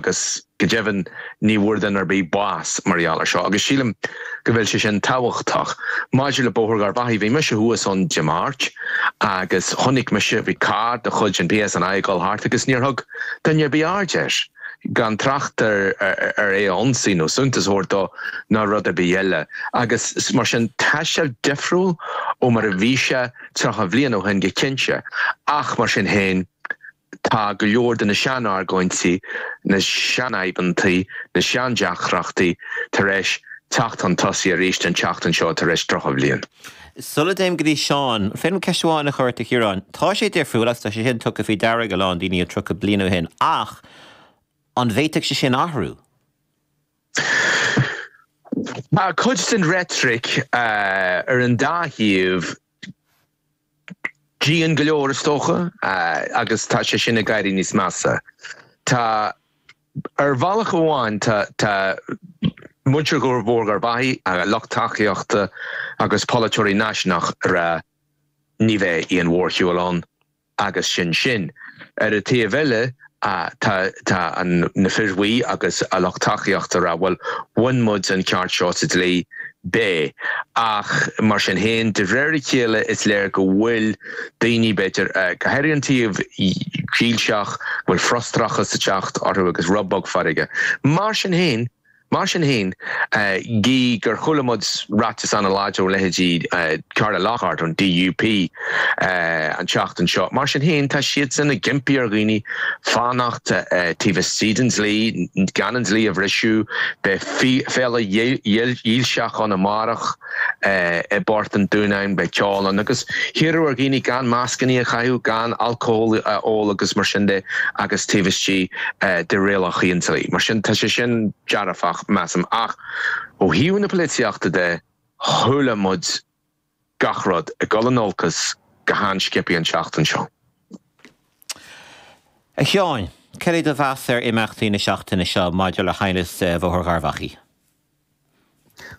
agus go deimhin ní bhfuair duine ar bith bás mar gheall ar seo agus sílim go bhfuil sé sin tábhachtach. Maidir le Bóthar Gharbhachaidh, bhí mise thuas ann Dé Máirt agus chonaic mise, bhí carr de chuid an PSNI ag dul thart agus níor thug duine ar bith aird air, gan trácht ar ar é a ionsaí nó suntas a thabhairt dó ná rud ar bith eile agus mar sin tá sé difriúil ó mar a bhí sé 30 bliain ó shin go cinnte ach mar sin féin, Tá go leor de na sean-argóintí, na seanaighneachtaí, na seandeacrachtaí tar éis teacht chun tosaigh arís an tseachtain seo tar éis drochbhliain. Sula dtéim go dtí Seán, an féidir liom ceist amháin a chur ort a Chiaráin. Tá sé difriúil agus tá sé sin tugtha faoi deara ag a lán daoine ó 30 bliain ó shin ach an bhféadfadh sé sin athrú? Tá cuid den reitric ar an dá thaobh dian go leor, is dócha, agus tá sé sin ag éirí níos measa. Tá, ar bhealach amháin, tá, tá, muintir Bhóthar Gharbhachaidh, a lucht tacaíochta agus polaiteoirí náisiúnacha ag rá ní bheidh aon mhórshiúl ann agus sin sin. Ar an taobh eile, Tá na Fir Bhuí agus a lucht tacaíochta ag rá, bhuel, bhain muid an ceart seo sa dlí. Ach mar sin féin, de réir a chéile is léir go bhfuil daoine, b'fhéidir, go háirithe an taobh dílseach, go bhfuil frustrachas ag teacht orthu agus rud beag feirge. Mar sin féin. Mar sin fhéin, gidh gur chuala muid ráiteas an-láidir ó leithéidí Carla Lockhart ón DUP an tseachtain seo, mar sin fhéin tá siadsan ag impí ar dhaoine fanacht taobh istigh den dlí, gan an dlí a bhriseadh. Beidh féile dhílseach ann amárach. i bPort an Dúnáin beidh ceol ann agus hiarradh ar dhaoine gan mascannaí a chaitheamh, gan alcól a ól agus mar sin de agus taobh istigh de rialacha an dlí. Mar sin tá sé sin dearfach measaim ach ó thaobh na polaitíochta de chuala muid gach rud ag dul in olcas go han-sciobtha an tseachtain seo. A Sheáin, cad é do mheas ar imeachtaí na seachtaine seo maidir le haighneas Bhóthar Gharbhachaidh?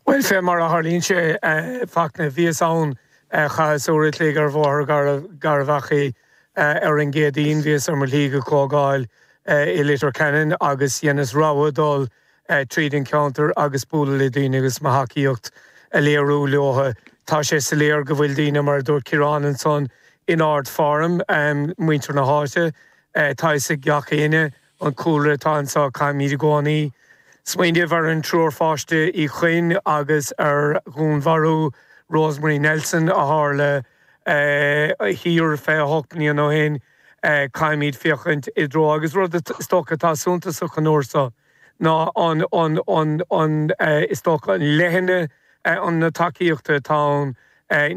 Bhuel, fé mar a tharlaíonn sé, a Fhachtna, bhíos ann, chaitheas uair a chloig ar Bhóthar Gharbhachaidh ar an gCéadaoin, bhíos ar mo shlí go comhdháil i Leitir Ceanainn agus dheineas rogha dul tríd an cheantar agus bualadh le daoine agus mo thacaíocht a léiriú leotha. Tá sé soiléir go bhfuil daoine, mar a dúirt Ciarán ansan, in ardfhoirm, muintir na háite, tá a fhios ag gach éinne, An cúlra atá anseo, caithfimid i gcónaí smaoineamh ar an triúr páiste Uí Chuinn agus ar dhúnmharú Rosemary Nelson a tharla thiar 28 bliain ó shin. Caithfimid féachaint i dtreo, agus rud is dócha atá suntasach an uair seo ná an is dócha an leithne na tacaíochta atá ann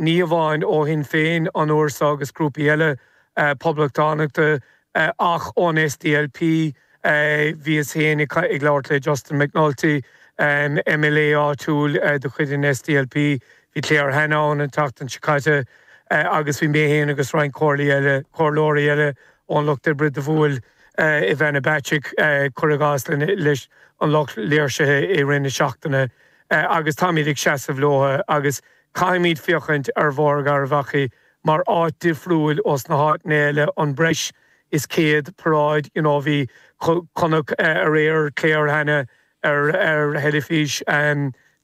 ní hamháin ó Shinn Féin an uair seo agus grúpaí eile Poblachtánacha, Ach ón SDLP, bhíos féin ag labhairt le Justin McNulty, MLA áitiúil de chuid an SDLP, bhí Claire Hanna ann an tseachtain seo caite, agus bhí mé féin agus roinnt comhairleoirí eile ón Lucht Oibre, do bhuail Ivana Bacik, cuir i gcás, leis an lucht léirsithe i rith na seachtaine. Agus táimid ag seasamh leo agus caithfimid féachaint ar Bhóthar Gharbhachaidh mar áit difriúil ós na háiteanna eile an breis is céad paráid you know bhí chonac aréir Claire Hanna ar ar theilifís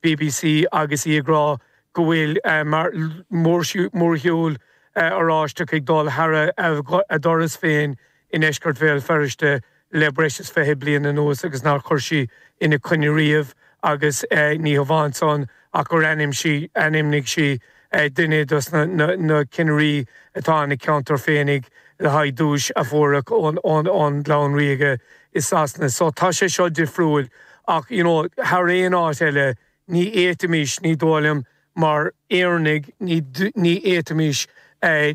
BBC agus í ag rá go bhfuil mar mórshiúl Oráisteach ag dul thar a doras féin i ndeisceart Bhéal Feirste le breis is fiche bliain anuas agus nár chuir sí ina coinne riamh agus ní hamháin san ach gur ainm- sí, ainmnigh sí duine dos na cinnirí atá ina ceantar féinig le haghaidh duais a fuaradh ón ón gclann ríoga i Sasana. So tá sé seo difriúil ach you know thar aon áit eile Ní fhéadfaimís, ní dóigh liom, mar Éireannaigh, ní fhéadfaimís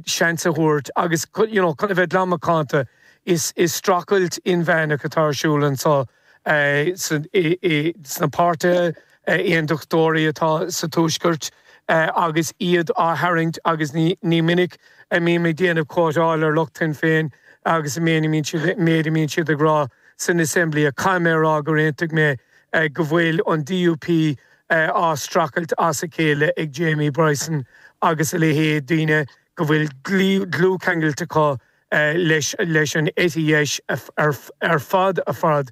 seans a thabhairt agus you know chun a bheith glan macánta is strachailt inmheánach atá ar siúl anseo sna páirtithe aontachtóirí atá sa tuaisceart agus iad á tharraingt agus ní minic a mbím ag déanamh quoteáil ar lucht Shinn Féin agus an méid a mbíonn siad ag rá san assembly ach caithfidh mé a rá gur aontaigh mé go bhfuil an DUP á streachailt as a chéile ag Jamie Bryson agus a leithéid, daoine go bhfuil dlúthcheangailt acu leis an eite dheis ar fad.